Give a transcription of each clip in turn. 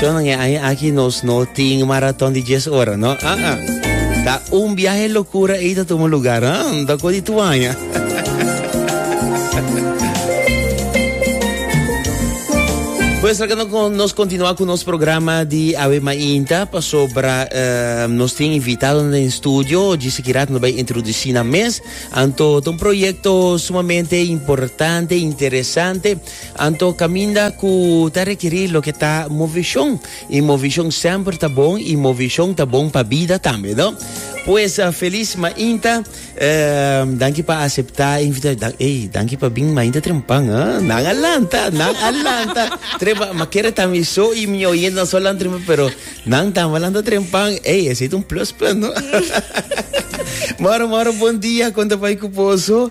John, e año aki nos no tin maraton di 10 ora, no? Ah, ah. Ta un viaje locura e ta toma lugar, ah? Da ko di tu aña. Pues acá no, nos continúa con nuestro programa de Ave Mainta, pasobra uh, nos tiene invitado en el estudio, dice que nos va a introducir na mes, anto un proyecto sumamente importante, interesante, Anto kaminda ku ta rekerí loke ta movishon. I movishon semper ta bon i movishon ta bon pa bida tambe, no? Pues felis mainta. Ehm, danki pa aseptá invita dan, ey, danki pa bin mainta trempan, ha? Nan a lanta, nan a lanta. Trempa, ma kere ta mi so i mi oyente nan so lan trempa, pero nan tambe lanta trempan. Ey, esei ta un plus punt, no? Moro, moro, bon dia. Konta bai ku poso.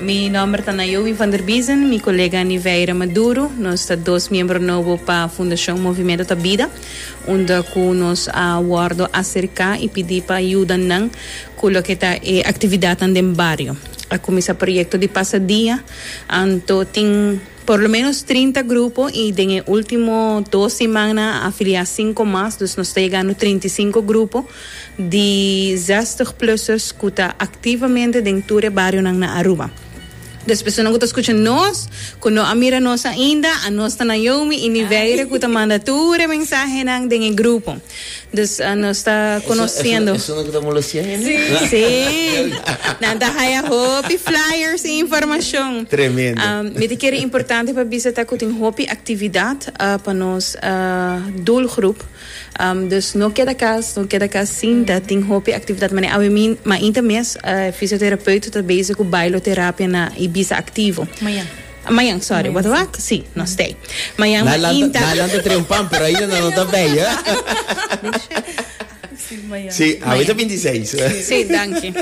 Mi nomber ta Nayomi van der Biezen, mi colega Niveira Maduro, nos ta dos miembro nobo pa Fundacion Movimiento ta Bida, unda cu nos a wordo acerca y pidi pa yuda nan cu loke ta e actividadnan den bario. A cuminsa proyecto di pasa dia, anto tin. Por lo menos trinta grupo y den e ultimo dos simannan a afilia cinco mas, dus nos ta yegando trinta y cinco grupo di zestig plusers cu ta activamente den tur e barionan na Aruba. Dus persona cu ta scucha nos, cu no a mira nos ainda, a nos ta na yomi y ni Weire cu ta manda tur e mensahenan den e grupo. Dus nos ta conociendo. Eso no kita molo sian yende. Sí, nan ta haya hopi flyers y informacion. Tremendo. Mi ta kere importante pa bisa ta cu tin hopi actividad pa nos doelgroep. Dus no keda cas, no keda cas sin ta tin hopi actividad. Mane awe mi mainta mes e fisioterapeut ta bezig cu bailoterapia na Ibiza Activo. Maña. Mayan, sorry, what the fuck? Si, no stay. Mayan ma inta. Na lanta tre un pan, pero ainda no ta bay, eh? Si, awit a 26. Si, danki.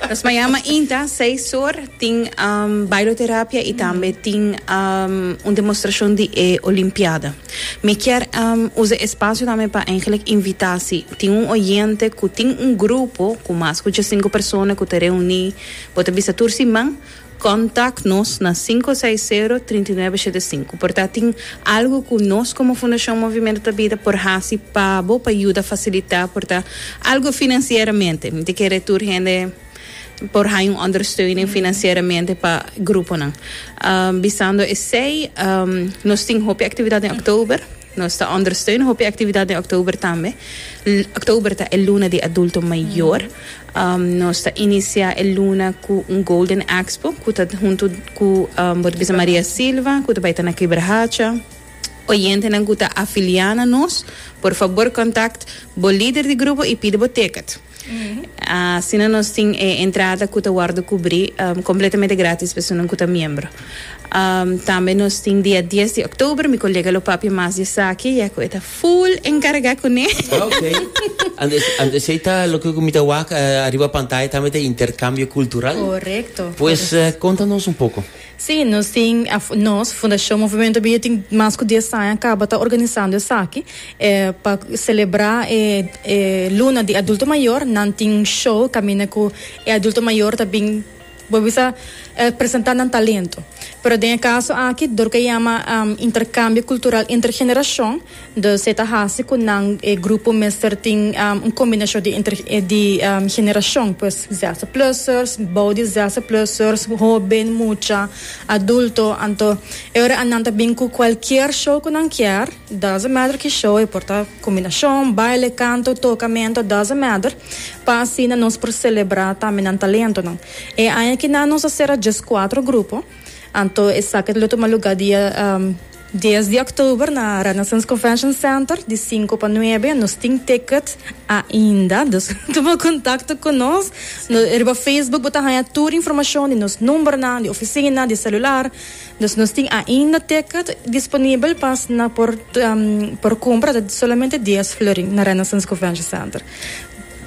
Nos mayan ma inta, seis sur, tin um, bailoterapia i tambe tin um, un demostracion di e olimpiada. Mi kier um, usa espacio tambe pa eigenlijk invita si tin un oyente ku tin un grupo ku mas ku 5 persona ku te reuni, bo ta bisa tur siman, Kontak nos na sinku seis sero trinta i nuebe shete sinku por ta tin algu ku nos komo Fundashon Movimentu ta bida por hasi pa bo pa yuda fasilitá por ta algu finansieramente. Mi ta kere tur hende por haña un ondersteuning finansieramente pa gruponan. Bisando esei nos tin hopi aktividat den òktober. Nos ta ondersteuna hopi actividad den oktober tambe. Oktober ta e luna di adulto mayor. Nos ta inicia e luna cu un Golden Expo cu ta hunto cu Bote Bisa Maria Silva cu ta bay ta na Quebrahacha. Oyentenan cu ta afilia na nos, por fabor contact bo lider di grupo y pide bo ticket. Asina nos tin e entrada cu ta wordo cubri completamente gratis personan cu ta miembro. Tambe nos tin dia dies di october, mi colega lo papia mas di esaki ya cu e ta full encarga cune. Ok. Ante, ante esey ta loke cu mi ta wak ariba pantaya tambe ta intercambio cultural. Correcto. Pues conta nos un poco. Sí, nos tin, nos, Fundacion Movimiento Bia tin mas cu dies aña caba ta organisando esaki, e pa celebra e e luna di adulto mayor nan tin un show caminda cu e adulto mayor ta bin, bo bisa, e presenta nan talento. Pero den e caso aki dor cu a yama intercambio cultural intergeneracion Dos e ta hasi cu nan e grupo mester tin un combinacion di entre di generacion pues ZZPLUSers, bou di ZZPLUSers, hoben, mucha, adulto, anto e ora nan ta bin cu cualkier show cu nan kier, doesn't matter ki show, e por ta combinacion, baile, canto, tocamento, doesn't matter, pa asina nos por celebra tambe nan talentonan. E aña ki nan nos a cera djes cuatro grupo, anto esaki lo tuma lugar dia. Dies di oktober na Renaissance Convention Center, di sinku pa nuebe. Nos tin ticket ainda, dus tuma kontakto ku nos. Riba Facebook bo ta haña tur informashon di nos numbernan di ofisina, di selular. Dus nos tin ainda ticket disponibel pas nan por kumpra ta solamente dies florin na Renaissance Convention Center.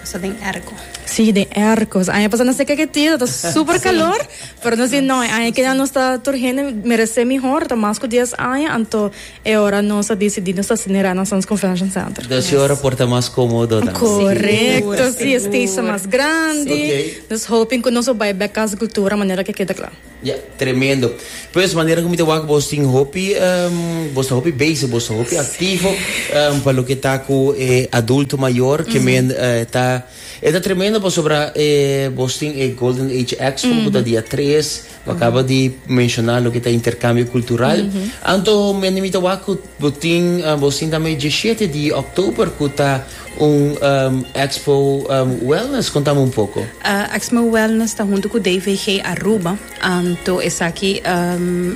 Pasa den erko. Sí, den erko. Sa aña pasá nos te keke tida, ta súper kalor, pero nos di no, e aña keda nos ta tur hende meresé mihor, ta mas ku dies aña, anto e ora nos a disidí nos ta hasi Nirana na Sands Convention Center. Dos i ora por ta mas kómodo tambe. Korekto, sí, e stage ta mas grandi. Dus hopin ku nos a bai bèk Casa Kultura manera ke keda kla. Ya, tremendo. Pues, manera ku mi ta wak bos tin hopi, bos ta hopi bezig, bos ta hopi aktivo pa loke ta ku e adulto mayor ke men ta, e ta tremendo pasobra bos tin e Golden Age Expo ku ta dia tres, bo akaba di menshona loke ta interkambio kultural, anto mi ta wak ku bo tin, bos tin tambe e djeshete di òktober ku ta. Un Expo Wellness, contame un poco. Exmo Wellness ta hunto cu DVG Aruba, anto esaki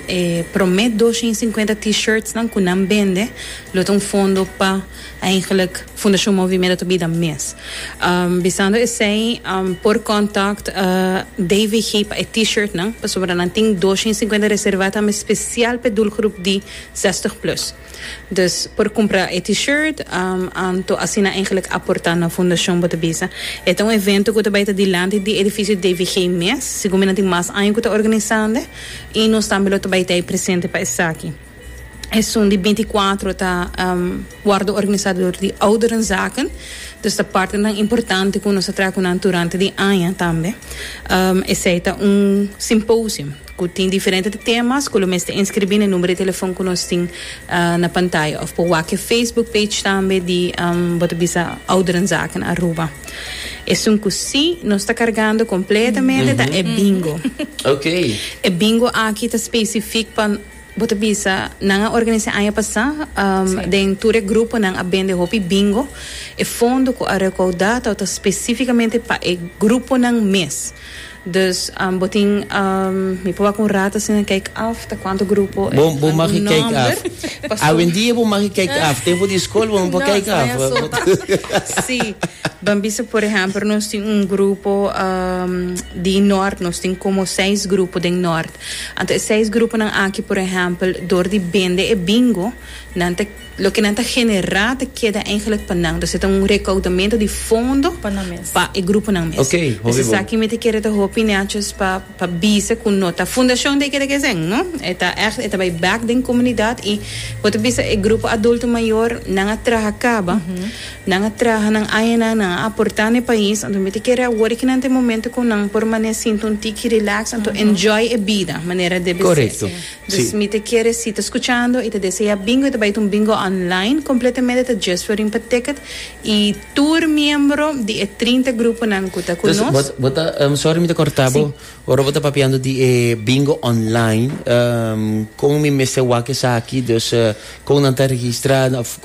e prome dosha y cincuenta T-shirtsnan cu nan bende lo ta un fondo pa eigenlijk Fundacion Movimiento ta bida mes. Bisando esey por contact DVG pa e T-shirtnan pasobra nan tin dosha y cincuenta reserva tambe special pa e doelgroep di zestig plus. Dus por cumpra e T-shirt, anto asina eigenlijk aporta na fundacion bo ta bisa. E ta un evento cu ta bay ta dilanti di edificio DVG mes, segun mi nan tin mas aña cu ta organisande y nos tambe lo ta bay ta ay presente pa esaki. Esun di binti kuatro ta wordo organisa door di Ouderenzaken, dus ta partenan importante cu nos ta traha cu nan durante di aña tambe. Esey ta un symposium. cu tin diferente temas cu lo mester inscribi n'e numero di telefon cu nos tin na pantaya of por wak e Facebook page tambe di bo ta bisa Ouderenzaken Aruba. Esun cu si nos ta cargando completamente ta e Bingo. E Bingo aki ta specific pa. Bo ta bisa nan a organisá aña pasá den tur e gruponan a bende hopi bingo. E fondo ku a rekoudá tabata spesífikamente pa e gruponan mes. Dus bo tin mi proba ku un rat asina kijk af ta kuantu grupo e algun nòmber. Bo magi kijk af. Awendia bo magi kijk af. Tempu di skol bo no por kijk af. No, esnan ta asoba. Sí. Ban bisa por ehèmpel nos tin un grupo di nòrt, nos tin komo seis grupo den nòrt. Anto e seis gruponan aki, por ehèmpel, dor di bende e bingo, nan ta, loke nan ta generá ta keda eigenlijk pa nan. Dus e ta un rekoudamento di fondo Pa nan mes. pa e gruponan mes. Oké, hopi Dus bo. esaki mi ta kere ta hopi neachos pa pa bisa ku no ta fundashon de keda kesèn, no. E ta ègt, e ta bai bèk den komunidat i bo ta bisa e grupo adulto mayor nan a traha kaba. Nan a traha nan añanan, nan a aportá na e pais, anto mi ta kere awor i kinan ta e momento ku nan por manera sinti un tiki relax, anto enjoy e bida manera debe ser. Korekto, si. Dus mi ta kere si ta skuchando i ta deseá bingo, i ta bai ta un bingo online, kompletamente ta djes for rin pa ticket i tur miembro di e trinta gruponan ku ta ku nos. Dus bo, bo ta, sòri mi ta kòrtá bo, ora bo ta papiando di e bingo online, kon mi mester wak esaki, dus kon nan ta registrá òf.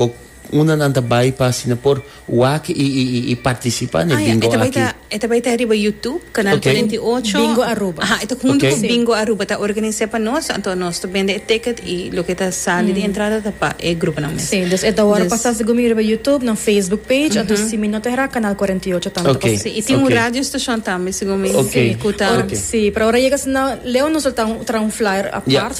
Unda nan ta bai pa asina por wak i partisipá n'e bingo aki? E ta bai ta riba Youtube, Canal Cuarenta y Ocho. Bingo Aruba. Aja, e ta huntu ku Bingo Aruba ta organis'é pa nos, anto nos ta bende e ticket i loke ta sali di entrada ta pa e gruponan mes. Si, dus e ta wòrdu pasá segun mi riba Youtube, nan Facebook page, anto si mi no ta herá Canal Cuarenta y Ocho tambe ta pasá. Si, i tin un radio stashon tambe segun mi ku ta. Si, pero ora yega asina Leo nos lo ta traha un flyer apart.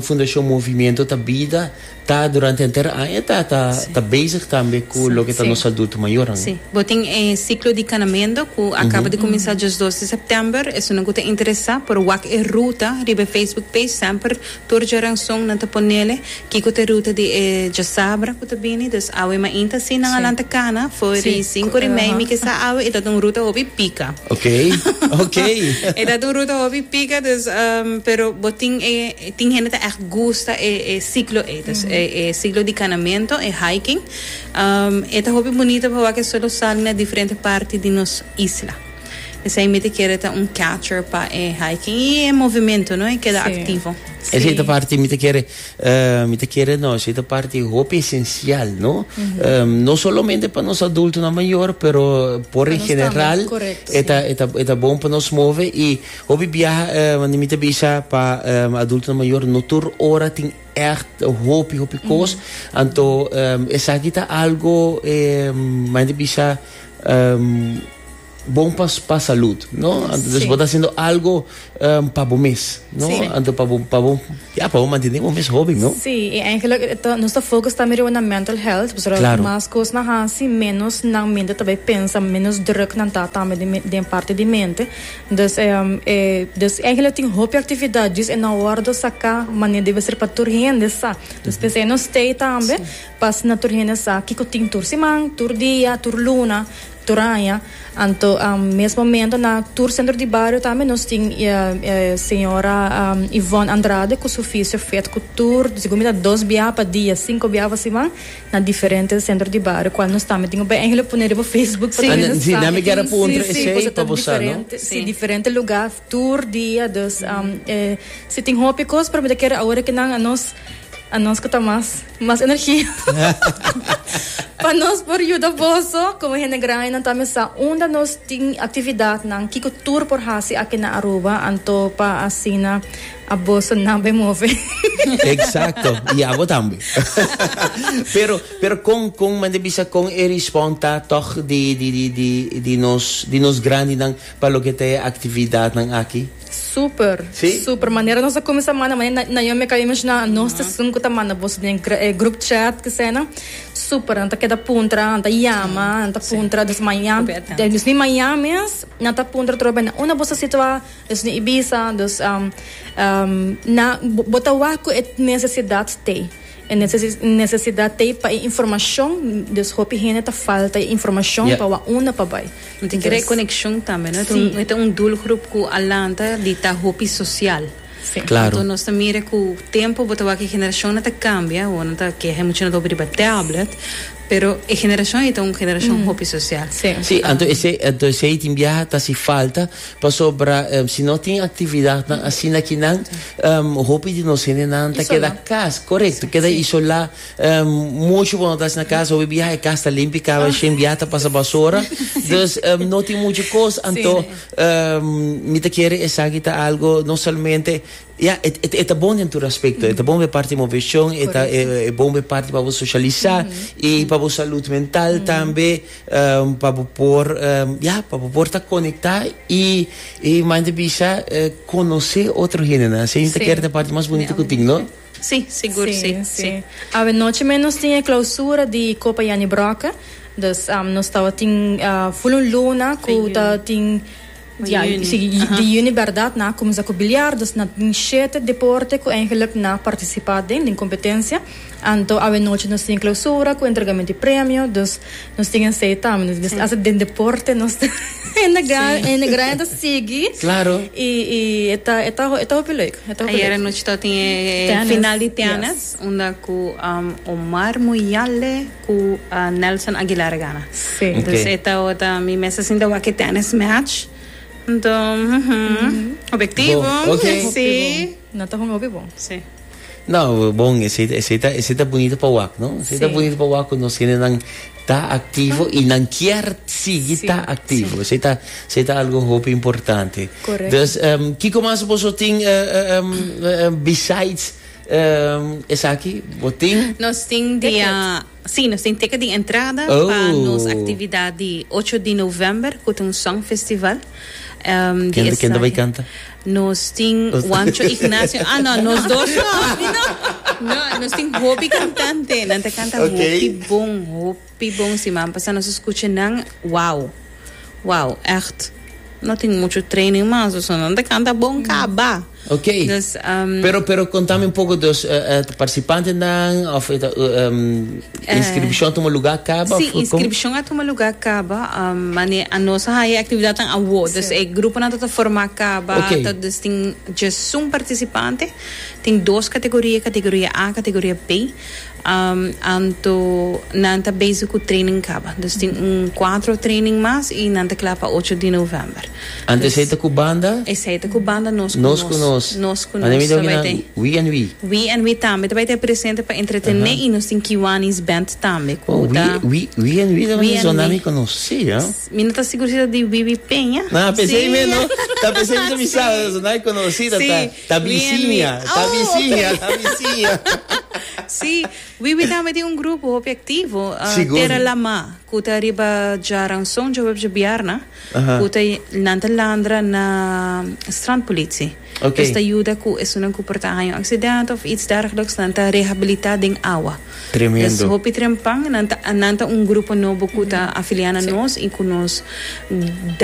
Fundashon Movimiento ta Bida ta durante henter aña ta ta bezig tambe ku loke ta nos adulto mayornan. Sí. Bo tin e ciclo di Canamendo cu a caba di cuminsa diasdos di september. Esunnan cu ta interesa por wak e ruta riba e Facebook page. Semper tur djaranson nan ta ponele. Kiko ta ruta di e djasabra ku ta bini? Dus awe mainta si nan a lanta kana for di sinku ori mei mi ke sa awe e tabata un ruta hopi pika. E tabata un ruta hopi pika dus pero bo tin e tin hende ta ègt gusta e e siklo ei dus e e siklo di kanamentu e hiking e ta hopi bunito pawa ke sol lo sali na diferente parti di nos isla. Esei mi ta kere ta un catcher pa e hiking y e movimento no e keda activo. Esei ta parti mi ta kere mi ta kere no esei ta parti hopi esencial no no solamente pa nos adulto nan mayor pero por en general e ta e ta e ta bon pa nos move y hopi biaha wende mi ta bisa pa adulto nan mayor no tur ora tin echt hopi hopi cos anto esaki ta algo mandi bisa. bon pa pa salud no anto des bo ta hasiendo algo pa bo mes no anto pa bo pa bo ya pa bo mantene bo mes hoben no Sí, i eigenlijk ta nos ta focus tambe riba nan mental health, pasobra Claro. mas cos nan hasi menos nan mente ta bay pensa, menos druk nan ta tambe den men- den parte di mente, dus eh dus eigenlijk tin hopi actividad djis e nan wordo saca mane debe ser pa tur hende sa, dus p'esei nos stay tambe Pas na tur hende sa kiko tin tur siman, tur dia, tur luna, tur aña. Anto mes momento na tur sentro di bario tambe nos tin e señora Yvonne Andrade cu su fisio fet cu tur dicigun mi ta dos bia pa dia, cinco bia pa siman na diferente centro di bario cual nos tambe tin obehenlo pone riba Facebook pa tur hende sa e tin si, si, cos ta diferente, si, diferente lugar. Tur dia dus e si tin hopi cos pero mi ta kere awor ke nan a nos a nos ku ta mas mas energia pa nos por yuda boso como hende grandi nan ta mesa unda nos tin actividad nan kiko tur por hasi aki na Aruba anto pa asina a boso nan bai move. Exacto y abo tambe pero pero con con manda bisa con e respon ta tog di di di di di nos di nos grandi nan. Pa loke ta e actividadnan aki? Super! Si? Super! Manera nos a cuminsa manda, manera Naomi a caba di menciona anos ta esun cu ta manda boso den e group chat esena, super! Nan ta keda puntra, nan ta yama, nan ta puntra. Dus mañan, dus di mañan mes nan ta puntra tur bay na unda boso a situa, dus di Ibiza, dus na, bo ta wak cu e necesidad t'ey, e necesidad t'ey pa e informacion, dus hopi hende ta falta e informacion pa wak unda pa bay. No tin kere konekshon tambe no e ta un doel grup ku a lanta di ta hopi sosial anto nos ta mire ku tempo bo ta wak e generashon nan ta kambia awo nan ta keha e muchanan ta hopi riba tablet pero e generashon ei ta un generashon hopi sosial si anto esei tin biaha ta hasi falta pasobra si no tin aktividatnan asina kinan hopi di nos hendenan ta keda kas korekto keda isolá. Um, mucho bo no tas na casa, hopi biaha e cas ta limpi, caba shen biaha ta pasa basora. Dus um, no tin mucho cos, anto um, mi ta kere esaki ta algo, no solamente, ja, e, e, e ta bon den tur aspecto, e ta bon be parte movetion, e ta e, e bon be parte pa bo socialisa, i pa bo salud mental tambe, um, pa bo por, um, ja, pa bo por ta conecta i, i mante bisa eh, conoce otro hendenan. Así mi ta kere ta parte mas bonito cu tin, no? Sí, sigur sí, sí. Awe nochi mei nos tin e clausura di Copa Jannie Brokke. Dus um, nos tawatin uh, full un luna ku ta tin ja, Juni. si, di Aha. juni verdad na kumsa ku biliar dus na tin shete deporte ku eigenlijk na partisipá den den kompetensia anto awe nochi nos tin e clausura ku entregamentu di premio dus Nos tin ensay tambe, nos mester hasi den deporte, nos ta enegra, enegra ta sigui. Claro. I, i e ta, e ta, e ta hopi leuk. E ta hopi Ayer leuk. anoche ta tin e Tennis, final di tennis, yes. unda ku um, Omar Muyale ku uh, Nelson Aguilar a gana. Sí. Ok. Dus e ta ota mi mester sinta wak e tennis match. Enton, mhm, objektivo. Bon, ok. Sí. No ta hunga hopi bon. Sí. No, bon, esey, esey ta, esey ta bunito pa wak, no? Esey ta Sí. bunito pa wak cu nos hendenan ta activo y nan kier sigui Sí, ta activo. Esey ta, esey ta algo hopi importante. Correcto. Dus, em, kico mas boso tin eh, eh, em, eh, em, besides em, esaki? Bo tin? Nos tin dia Sí, nos tin teken di entrada pa nos actividad di ocho di november cu ta un song festival. Ken ta ken ta bay canta? Nos tin Juancho Ignacio, ah no, nos dos no. Nos tin hopi cantante, nan ta canta hopi bon, hopi bon. Si man pasa nos escucha nan, wow, wow, echt. No tin mucho training masa, so nan ta canta bon caba. Ok. Dus, um, pero, pero contame un poco, dus, uh, eh, uh, participantenan, of uh, um, inscripción uh, toma lugar caba? Sí, inscripción a toma lugar caba, um, mane a nos hay actividad tan awo, dus e grupo na tota forma caba, okay. ta, dus tin just un participante, tin dos categoría, categoría A, categoría B, Anto nan ta bezig cu training caba. Dus tin un cuatro training mas y nan ta cla pa ocho di november. Anto esey ta cu banda? Esey ta cu banda nos cu nos. Nos cu nos. Nos cu nos. Anto mi ta oki nan we and we. We and we tambe ta bay ta presente pa entretene y nos tin Kiwanis Band tambe cu ta. Oh we and we tambe ta bay zona mi conoci, ya. Mi no ta sigur si ta di Wiwi Peña. Nah, p'esey mi no. Ta p'esey mi ta bisa, zona mi conoci ta ta. Ta bisiña, ta bisiña, ta bisiña. Sí, Wiwi tambe tin un grupo hopi aktivo, Tera Lamá, ku ta riba Djaranson, dje webje bièrna, ku ta nan ta landra na strandpolitie. Es ta yuda ku esunnan ku por ta haña un aksident òf its dèrgeliks, nan ta rehabilitá den awa. Tremendo. Es hopi trempan, nan ta un grupo nobo ku ta afiliá na nos i ku nos.